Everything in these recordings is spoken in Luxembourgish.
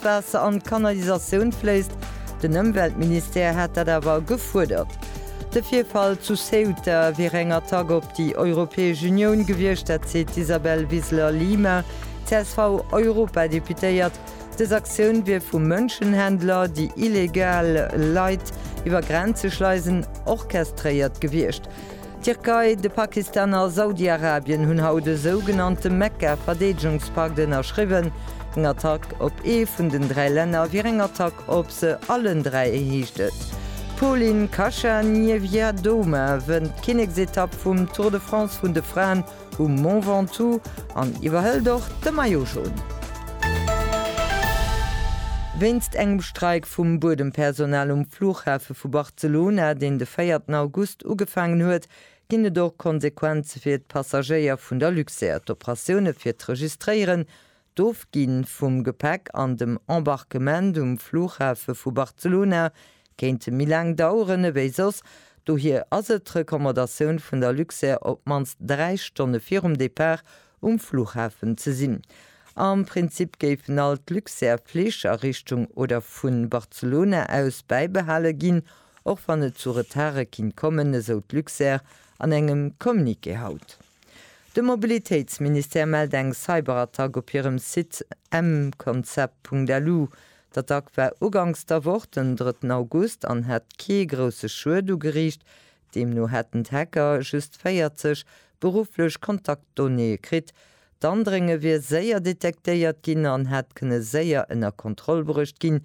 D'Waasser an d'Kanalisatioun fléisst. Den Ëmweltministère hätt dat awer gefuerdert. De Virfall zu Ceuta wier eng Attack op déi Europäesch Unioun gewiescht. Dat seet d'Isabel Wiseler-Lima, CSV-Europadeputéiert. Dës Aktioun wier vu Mënschenhändler, déi illegal Leit iwwer Grenze schleisen, orchestréiert gewiescht. D'Tierkei, de Pakistan a Saudiarabien hunn haut e sougenannte Mekka-Verdeedegungspakt ënnerschriwwen. Eng Attack op ee vun den dräi Länner wier eng Attack op se allen dräi, heescht et. D'Polin Kacha-Niewiadoma wënnt d'Kinneksetapp vum Tour de France vun de Fraen um Mont Ventoux an iwwerhëlt och de Maillot Jaune. Wéinst engem Streik vum Buedempersonal um Flughafe vu Barcelona Zu Luna, deen de véierten August ugefaangen huet, ginn et och Konsequenze fir d'Passagéier vun der Luxair. D'Operatioune fir d'Registréieren, d'Ofgi vum Gepäck an dem Embarquement um Flughafe vu Barcelona kéinte méi laang daueren ewéi soss. Dohier ass et d'Recommandatioun vun der Luxair, op d'mannst dräi Stonne virum Depart um Fluchhafen ze sinn. Am Prinzip géifen all d'Luxair Flich a Richtung oder vun Barcelona aus bäibehale ginn, och wann et zu Retarde kinnt kommen, esou d'Luxair an engem Communiqué haut. De Mobilitéitsministère mellt eng Cyberattack op hirem Site mconcept.lu. D'Attack war ugangs der Woch, den drëtten August, an hat kee grousse Schued ugeriicht, Deemno hätten d'Hacker just 40 berufflech Kontaktdonnéeë kritt. D'Andrénge wier séier detektéiert ginn an hätt kënne séier ënner Kontroll bruecht ginn.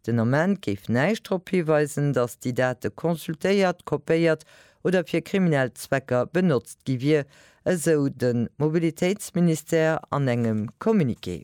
Den Ament géif näischt drop hiweisen, datt déi Date consultéiert, kopéiert oder fir kriminell Zwecker benotzt gi wier, esou de Mobilitéitsministère an engem Communiqué.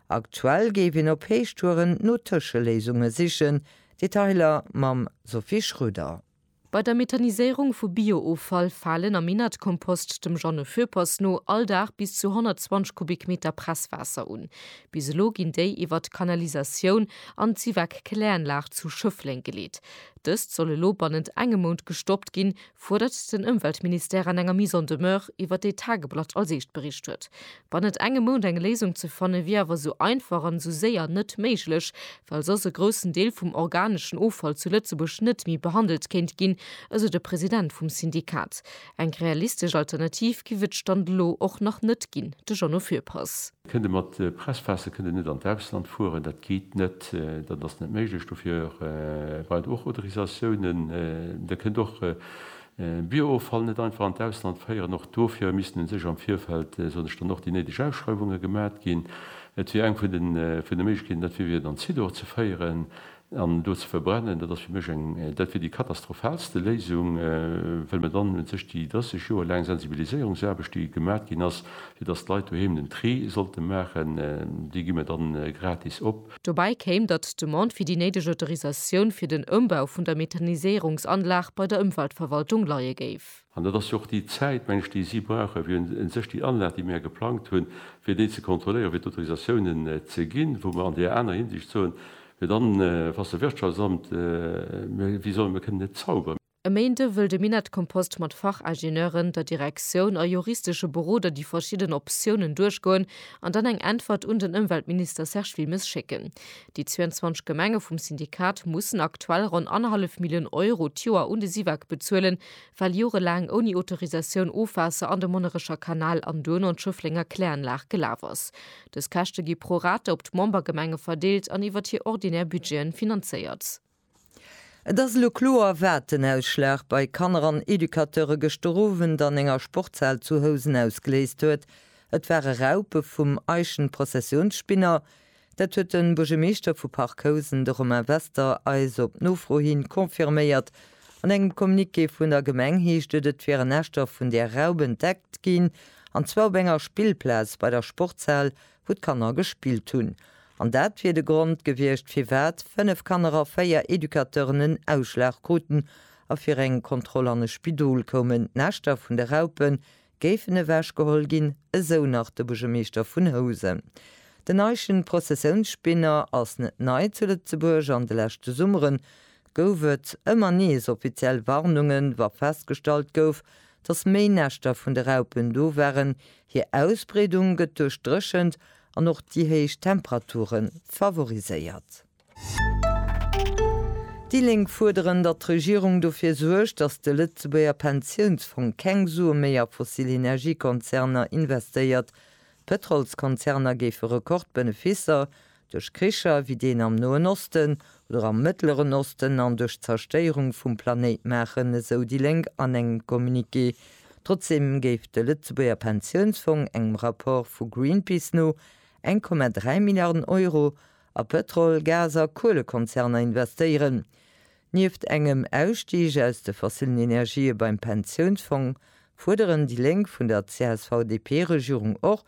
Aktuell géif een op Héichtouren no Tëscheléisunge sichen. Detailer mam Sophie Schröder. Bei der Methaniséierung vu Bio-Offall falen am Innertkompost dem Jeanne Foeppers no all Dag bis zu 120 Kubikmeter Presswaasser un. Bis elo ginn déi iwwert d'Kanalisatioun an d'Sivac Kläranlag zu Schëffleng geleet. Dëst soll elo bannent engem Mount gestoppt ginn, fuerdert den Ëmweltministère an enger Mise en demeure, iwwer déi d'Tageblatt als Eescht bericht huet. Wann et engem mount eng Léisung ze fanne wier awer sou einfach an sou séier net méiglech, well soss e groussen Deel vum organeschen Offall zu Lëtzebuerg net méi behandelt kéint ginn, esou de President vum Syndikat. Eng realistesch Alternativ giff et Stand elo och nach net ginn, de Jeannot Fürpass. Kënnt e mat Presspässe, kënnt e net an d'Ausland fueren, dat geet net, dat ass net méiglech. Dofir brauch et och Autorisatiounen. Der kënnt och Bio-Offall net einfach an d'Ausland féieren, och dofir missten u sech am Virfeld, soen ech dann, och déi néideg Ausschreiwunge gemat ginn. Et wier eng vun de Méiglechkeeten, dat wier dann Zidor ze féieren an en do ze verbrennen. Dat ass fir mech eng, dat wier déi katastrophalste Léisung, well mer dann u sech déi 30 Joer laang Sensibiliséierungsaarbecht, déi gemat ginn ass, fir datt d'Leit doheem den Tri sollte maachen, déi gi mer dann gratis op. Dobäi kéim, datt d'Demande fir déi néideg Autorisatioun fir den Ëmbau vun der Methaniséierungsanlag bei der Ëmweltverwaltung leie géif. An dat ass jo och déi Zäit, meng ech, déi si brauche fir u sech déi Anlag, déi mir geplangt hunn, fir déi ze kontrolléieren, fir d'Autorisatiounen ze ginn, wou mer an där anerer Hinsicht soen, fir dann, Wasserwirtschaftsamt, mir, wéi soll, mir kënnen net zauberen. E Méinde wëll de Minett Kompost mat Fachingenieuren, der Direktioun a juristesche Beroder déi verschidden Optiounen duerchgoen an dann eng Äntwert un den Ëmweltminister Serge Wilmes schécken. Déi 22 Gemenge vum Syndikat mussen aktuell ronn annerhallef Millioun Euro d'Joer un de Syvag bezuelen, well jorelaang ouni Autorisatioun Ofwaasser an de Monnerecher Kanal an duerno an d'Schëfflenger Kläranlag gelaf ass. Dës Käschte gi pro rate op d'Membergemenge verdeelt an iwwert hir ordinär Budgeten finanzéiert. Et ass elo kloer, wat den Ausschlag bei Kanner an Educateure gëschter Owend an enger Sportshal zu Housen ausgeléist huet. Et ware Raupe vum Eichenprozessionsspinner. Dat huet de Buergermeeschter vu Parc Housen, de Romain Wester, eis op Nofro hi confirméiert. An engem Communiqué vun der Gemeng heescht et, et wieren Näschter vun där Raup entdeckt ginn, an zwar op enger Spillplaz bei der Sportshal, wou d'Kanner gespillt hunn. An dat wier de Grond gewiescht, firwat fënnef Kanner a véier Educateuren en Ausschlag kruten a fir eng Kontroll an e Spidol koumen. D'Näschter vun de Raupe géifen ewechgeholl ginn, esou nach de Buergermeeschter vun Housen. Den Eischen Prozessiounsspinner ass net nei zu Lëtzebuerg. An de leschte Summere gouf et ëmmer nees offiziell Warnungen, wa festgestallt gouf, datt méi Näschter vun de Raupen do waren. Hir Ausbreedung gëtt duerch d'Dréchent An och déi héich Temperature favoriséiert. Déi Lénk fuerderen, datt d'Regierung dofir suergt, datt de Lëtzebuerger Pensiounsfong keng Sue méi a fossil Energiekonzerner investéiert. D'Pëtrolskonzerner géife Rekordbeneficer, duerch Kricher wéi deen am Noen Osten, Lor am Mëttleren Osten an duerch d'Zerstéierung vum Planéit maachen, esou déi Lénk an engem Communiqué. Trotzdeem géif de Lëtzebuerger Pensiounsfong engem Rapport vu Greenpeace no 1,3 Milliarden Euro a Pëtrol-, Gas a Kuelekonzerner investéieren. Nieft engem Ausstig aus de fossillen Energië beim Pensiounsfong fuerderen déi Lénk vun der CSV-DP-Regierung och,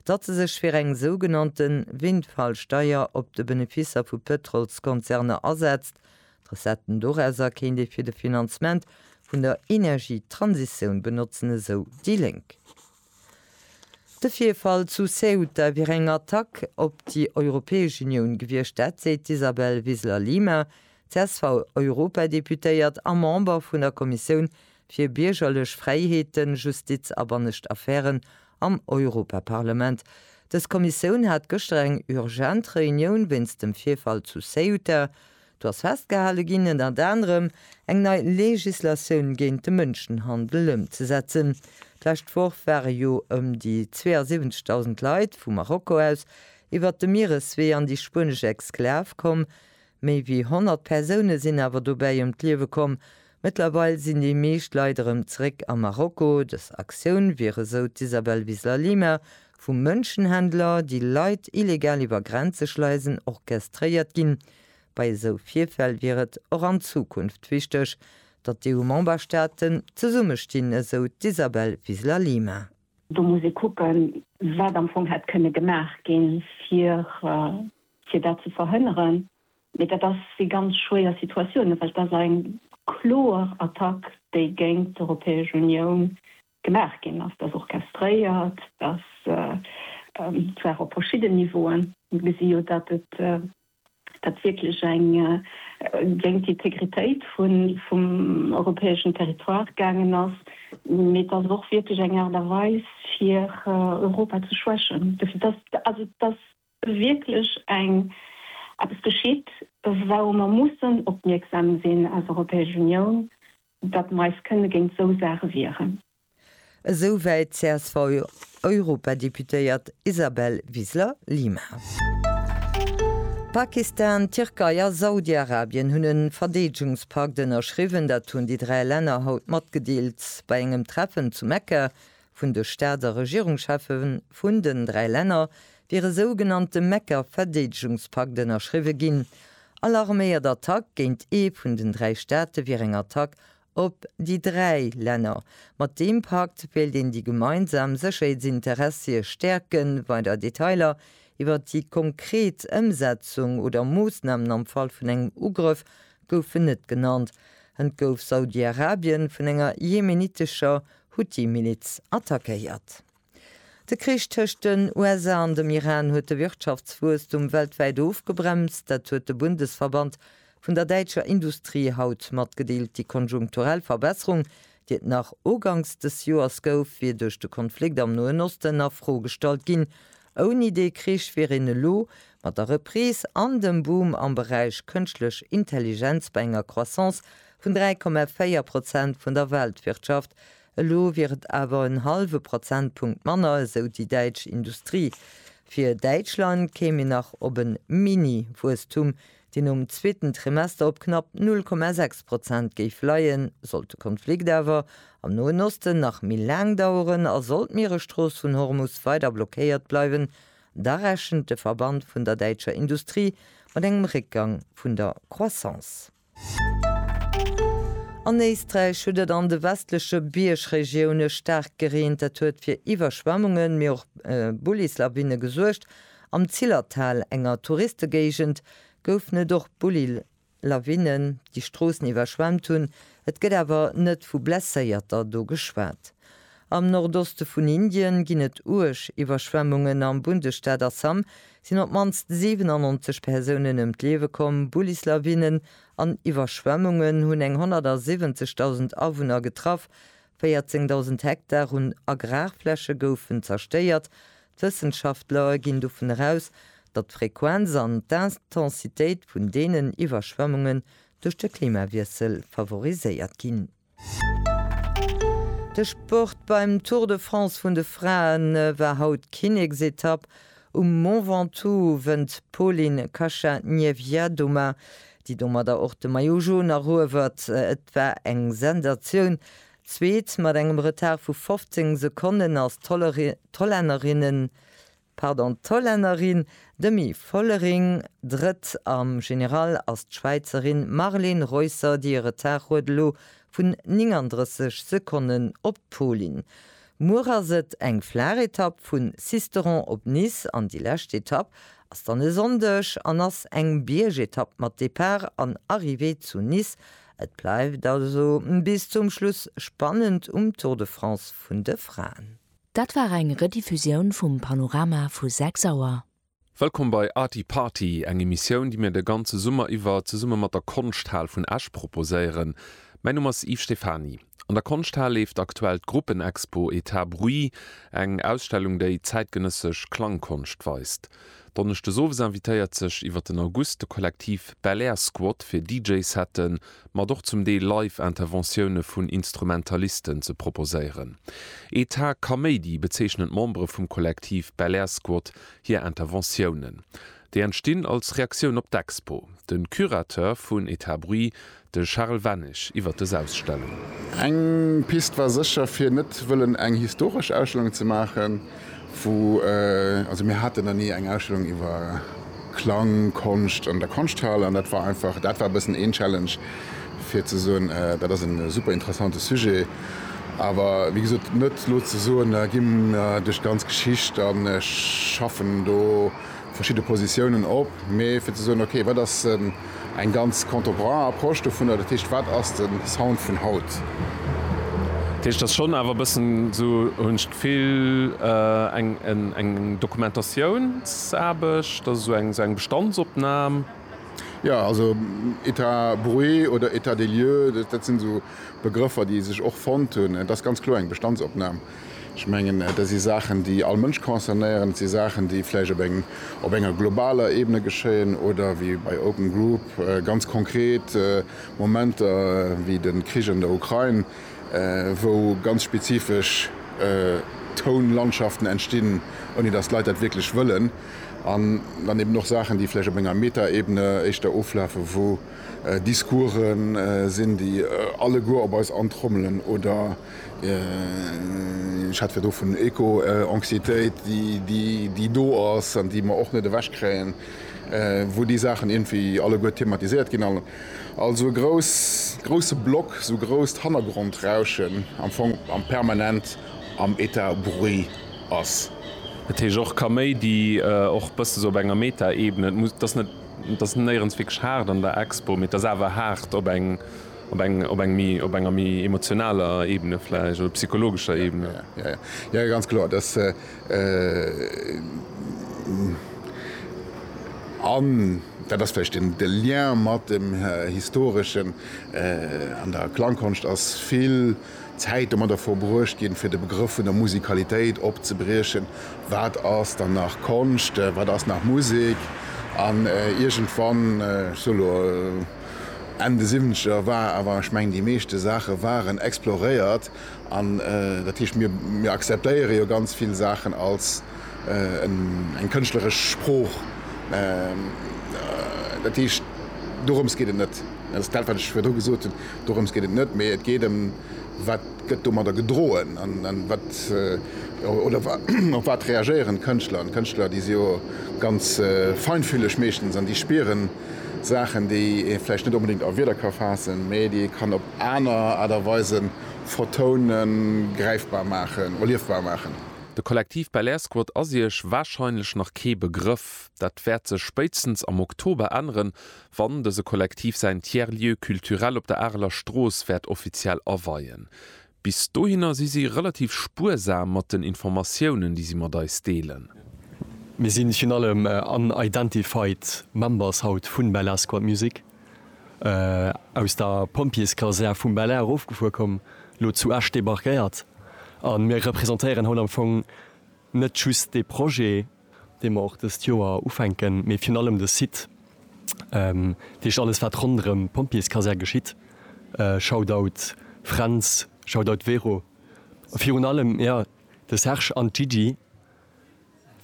datt se sech fir eng sougenannte Windfall-Steier op de Benefisser vu Pëtrolskonzerner asetzt. D'Recetten dorauser kéint ee fir de Finanzement vun der Energietransitioun benotzen, esou déi Lénk. De Virfall zu Ceuta wier eng Attack op déi Europäesch Unioun gewiescht, dat seet d'Isabel Wiseler-Lima, CSV-Europadeputéiert a Member vun der Kommissioun fir biergerlech Fräiheeten, Justiz a bannescht Affären am Europaparlament. Dës Kommissioun hat gëschter eng urgent Reunioun wéinst dem Virfall zu Ceuta. Do ass festgehale ginn, ënnert anerem eng nei Legislatioun géint de Mënschenhandel ëmzesetzen. D'lescht Woch ware jo ëm déi 72.000 Leit vu Marokko aus iwwert de Miereswee an déi spuenesch Exklav komm, Méi wéi 100 Persoune sinn awer dobäi ëm d'Liewe komm. Mëttlerweil sinn déi meescht Leit erëm zeréck a Marokko. Dës Aktioun wier, esou d'Isabel Wiseler-Lima, vu Mënschenhändler, déi Leit illegal iwwer Grenze schleisen, orchestréiert ginn. Bei esou Virfäll wier et och an Zukunft wichteg, datt d'EU-Memberstaaten zesummestinn, esou d'Isabel Wiseler-Lima. Do muss ee kucken, wat am Fong hätt kënne gemaach ginn, fir fir dat ze verhënneren, mee dat ass si ganz schwéier Situatiounen, well et ass eng kloer Attack, déi géint d'Europäesch Unioun gemaach ginn ass. Dat ass orchestréiert, dass zwar op verschidden Niveauen, mir gesi jo, datt et dat wierklech eng géint d'Integritéit vum europäeschen Territoire gaangen ass, mee et ass och wierklech eng Aart a Weis, fir Europa ze schwächen. Dofir, dass, also dass Well wierklech eng eppes geschitt, wourou mer mussen opmierksam sinn als Europäesch Unioun, datt mer eis kënne géint esou Saache wieren. Esou wäit d'CSV-Europadeputéiert Isabel Wiseler-Lima. Pakistan, d'Tierkei a Saudi-Arabien hunn e Verdeedegungspakt ënnerschriwwen. Dat hunn déi dräi Länner haut matgedeelt bei engem Treffen zu Mekka, vun de Staats a Regierungscheffe vun den dräi Länner wier e sougenannte Mekka-Verdeedegungspakt ënnerschriwwe ginn. All arméiert Attack géint ee vun den dräi Staate wier eng Attack op déi dräi Länner. Mat deem Pakt wéilt een déi gemeinsam Sécherheetsinteressie stäerken. Weider Detailer iwwer déi konkret Ëmsetzung oder Moossnamen am Fall vun engem Ugrëff goufen net genannt. Hënt gouf Saudi-Arabien vun enger jemenitescher Huthi-Miliz attackéiert. De Krich tëscht den USA an dem Iran huet de Wirtschaftswuesstum weltwäit ofgebremst. Dat huet de Bundesverband vun der däitscher Industrie haut matgedeelt. Déi konjunkturell Verbesserung, déi et nach ugangs des Joers gouf, wier duerch de Konflikt am Noen Osten a Fro gestallt ginn, Ouni dee Krich wier een elo, mat der Reprise an dem Boom am Beräich Kënschtlech Intelligenz, bei enger Croissance vun 3,4 Prozent vun der Weltwirtschaft. Elo wier et awer en hallwe Prozentpunkt manner, esou déi däitsch Industrie. Fir Däitschland kéim een nach op e Mini-Wuesstum, deen um zweeten Trimester op knapp 0,6 Prozent géif leien, sollt de Konflikt awer am Noen Osten nach méi laang daueren a sollt d'Mieresstrooss vun Hormus weider blockéiert bleiwen, da rechent de Verband vun der däitscher Industrie mat engem Réckgang vun der Croissance. An Éisträich huet et an de westleche Biergregioune staark gereent. Dat huet fir Iwwerschwemmungen, mee och Bullislawine gesuergt. Am Zillertal, enger Touristegéigend, goufen et och Bulli-Lawinnen, déi Stroossen iwwerschwemmt hunn. Et gëtt awer net vu Blesséierter do geschwat. Am Nordoste vun Indien ginn et uerg Iwwerschwemmungen. Am Bundesstaat Assam sinn op d'mannst 97 Persounen ëm d'Liewe komm. Bullislawinnen an Iwwerschwemmungen hunn eng 170.000 Awunner getraff, 14.000 Hektar un Agrarfläche goufen zerstéiert. D'Wëssenschaftler ginn dovun eraus, datt d'Frequenz an d'Intensitéit vun deenen Iwwerschwemmungen duerch de Klimawiessel favoriséiert ginn. De Sport, Beim Tour de France vun de Frae war haut d'Kinneksetapp. Um Mont Ventoux wënnt d'Polin Kacha-Niewja-Doma déi domadder och de Maillot Jaune eruewert, et war eng Sensatioun, Zweet mat engem Retard vu 15 Sekonnen ass d'Hollännerinnen, pardon, d'Hollännerin Demi Vollering, Drëtt am General ass d'Schwäizerin Marleen Reusser, déi e Retard huet elo vun 39 Sekonnen op d'Polin. Muer ass et eng flaach Etapp vun Sisteron op Nice an déi lescht Etapp ass dann e Sonndeg an ass eng Biergetapp mat Depart an Arrivée zu Nice. Et bleift also bis zum Schluss spannend um Tour de France vun de Fraen. Dat war eng Rediffusioun vum Panorama vu 6 Auer. Wëllkomm bei Arty Party, eng Emissioun, déi mir de ganze Summer iwwer zesumme mat der Konschthal vun Esch proposéieren. Mäin Numm ass Yves Stephany. An der Konschthal leeft aktuell d'Gruppenexpo Etat Bruit, eng Ausstellung, déi zäitgenëssesch Klangkonscht weist. Donneschdes owes invitéiert sech iwwer den August de Kollektiv Belair Squad fir DJ-Sette mat och zum Deel live Interventioune vun Instrumentalisten ze proposéieren. Etat Kaméidi bezeechnen d'Membere vum Kollektiv Belair Squad hir Interventiounen. Déi entstinn als Reaktioun op d'Expo. De Curateur vun Etat Bruit, de Charel Wennig, iwwer des Ausstellung. Eng Pist war sécher, fir net wëllen eng historesch Ausstellung ze maachen. Wou, also mir haten dann ni eng Ausstellung iwwer Klang, Konscht an der Konschthal an dat war einfach, dat war e bëssen een Challenge fir ze soen, dat ass e super interessante Sujet. Awer wéi gesot, net elo ze soen, da gi mer duerch d'ganz Geschicht an schaffen do, verschidde Positiounen op, mee fir ze soen, okay, wat ass eng ganz contemporain Approche dovunner, dat heescht, wat ass de Sound vun haut? Dat heescht, et ass schonn awer e bëssen esou, hunn ech d'Gefill, eng Dokumentatiounsarbecht, also esou eng Bestandsopnam. Jo, also État bruit oder État des lieux, dat sinn esou Begrëffer, déi sech och fonnt hunn. Et ass ganz kloer eng Bestandsopnam. Ech mengen, dat si Saachen, déi all Mënsch concernéieren. Et si Saachen, déi vläicht op enger globaler Ebene geschéien oder wéi bei Open Group ganz konkret Momenter wéi de Krich an der Ukrain, wou ganz spezifesch Tounlandschaften entstinn, ouni datt d'Leit dat wierklech wëllen. An dann eben och Saachen, déi vläicht op enger Meta-Ebene éischter oflafen, wou Discourse sinn, déi alleguer op eis antrommelen oder, Ech hat virdru vun Eco-Anxiétéit, déi do ass an déi mer och net ewechkréien, wou déi Saachen iergendwéi alleguer thematiséiert ginn. Also e grouse Block, esou grousst Hannergrond-Rauschen am Fong a permanent am Etat bruit ass. Dat heescht och Kaméidi, och e bësse esou op enger Meta-Ebene. Et ass néierens wierklech haart an der Expo, mee et ass awer haart op eng. Op enger méi emotionaler Ebene vläicht, oder psychologescher Ebene? Jo, jo, jo, ganz kloer. Dass an dat ass vläicht de Lien mat dem Historeschen, an der Klangkonscht ass vill Zäit domadder verbruecht ginn, fir de Begrëff vun der Musikalitéit opzebriechen. Wat ass dann nach Konscht, wat ass nach Musek? An iergendwann, ech soe lo, Enn de Siwwenzeger war awer, ech mengen, déi meeschte Saache waren exploréiert an dat heescht mir mir akzeptéiere jo ganz vill Saachen als eng kënschtleresch Sprooch. Dat heescht dorëms geet et net. Dat ass dat wat ech virdru gesot hunn, dorëms geet et net, mee et geet ëm wat gëtt domadder gedroen an wat oder op wat reagéieren d'Kënschtler an d'Kënschtler déi si jo ganz feinfühleg meeschtens an déi spieren, Saachen, déi ee vläicht net onbedéngt a Wierder ka faassen, mä déi ee kann op aner Aart a Weise vertounen, gräifbar maachen, erliefbar maachen. De Kollektiv Belair-Squad ass Iech warscheinlech nach kee Begrëff. Dat wäert sech spéitstens am Oktober änneren, wann dëse Kollektiv säin Tiers-Lieu culturel op der Areler Strooss wäert offiziell aweien. Bis dohinner si si relativ spuersam mat den Informatiounen, déi si mat eis deelen. Mir sinn virun allem unidentified members haut vun Bel-Air Squad Music aus der Pompjeeskasär vum Bel-Air erofgefuer komm, lo zu Esch debarquéiert. A mir représentéieren haut am Fong net just dee Projet. dee mer och dëst Joer ufänken, mee virun allem de Site, dat heescht alles wat ronderëm d'Pompjeeskasär geschitt, Shoutout Fränz, Shoutout Vero, a virun allem jo de Serge an d'Gigi,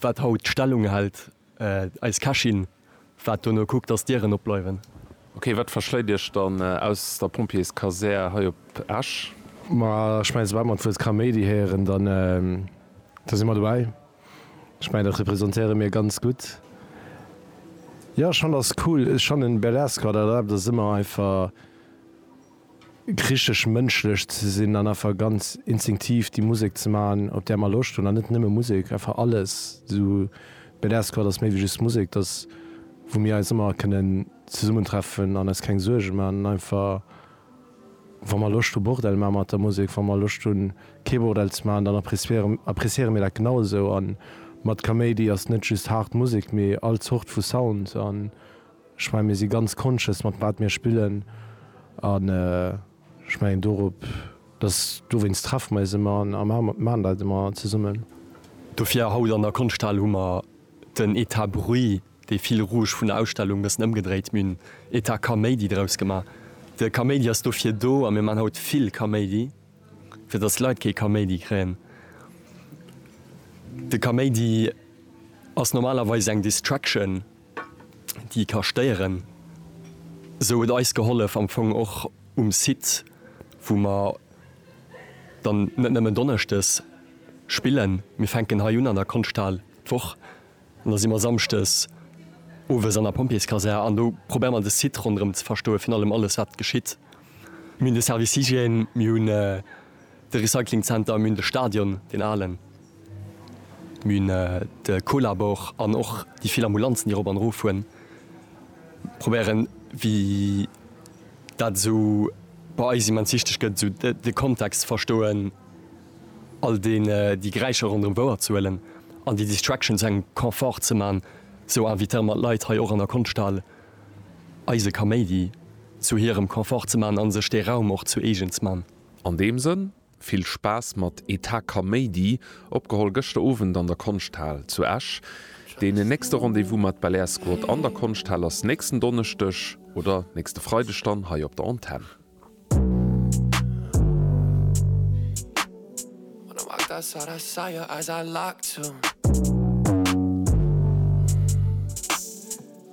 wat haut d'Stellung hält, eis Kächin. Waart dono, kuck dass d'Dieren op bleiwen. Ok, wat verschléit iech dann aus der Pompjeeskasär hei op Esch? Ma ech mengen soubal mer d'Wuert Kaméidi héieren, da si mer dobäi. Ech mengen dat representéiere mir ganz gutt. Jo ech fannen ass cool, ech fannen Berlesque war dat awer, dat ass ëmmer einfach. Richteg mënschlech ze sinn an einfach ganz instinktiv déi Musek ze man, op där mer Loscht hunn. An net nëmme Musek, einfach alles. Esou BDR Squad ass méi wéi just Musek. Et ass, wou mir eis ëmmer kënnen zesummentreffen an eis keng Suerge man. An einfach, wa mer Loscht hu Bordell man mat der Musek, wa mer Loscht hunn kee Bordell ze man, dann appreciéiere mir dat genau esou. A mat Kaméidi ass net just haart Musek, mee all Zort vu Sound. Ech mengen, mir si ganz conscious, mat wat mir spillen. An ech mengen, dorop, dass, dowéinst treffe mer eis ëmmer a maachen dat ëmmer zesummen. Dofir, haut an der Konschthal hu mer den Etat Bruit, dee Fil rouge vun der Ausstellung, e bëssen ëmgedréit. Mir hunn Etat Kaméidi draus gemaach. De Kaméidi ass dofir do, a mir maachen haut vill Kaméidi, fir dass d'Leit kee Kaméidi kréien. De Kaméidi ass normalerweis eng Distraction. déi ka stéieren, esou huet eis gehollef am Fong och um Site, wou mer dann net nëmmen donneschdes spillen, mir fänken hei un an der Konschthal d'Woch an da si mer samschdes owes an der Pompjeeskasär an do probéiere mer de Site ronderëm ze verstoen, virun allem alles wat geschitt. Mir hunn de Service Hygiène, mir hunn de Recyclingzenter, mir hunn de Stadion, deen alen. D'Mün, de Colabor an och déi vill Ambulanzen, déi erop an erof fueren, probéieren, wéi dat esou bei eis immens wichteg gëtt, esou de Kontext ze verstoen, all deen, déi Geräischer ronderëm wouer ze huelen an déi Distraction zu engem Confort ze man, esou invitéiere mer d'Leit hei och an der Konschthal, eise Kaméidi zu hirem Confort ze man a sech dee Raum och zu eegen ze man. An deem Sënn Vill Spaass mat Etat Kaméidi, opgeholl gëschter Owend an der Konschthal zu Esch. Deen nächste Rendez-vous mat Belair Squad an der Konschthal ass nächsten Donneschdeg oder nächste Freideg dann hei op der Antenn.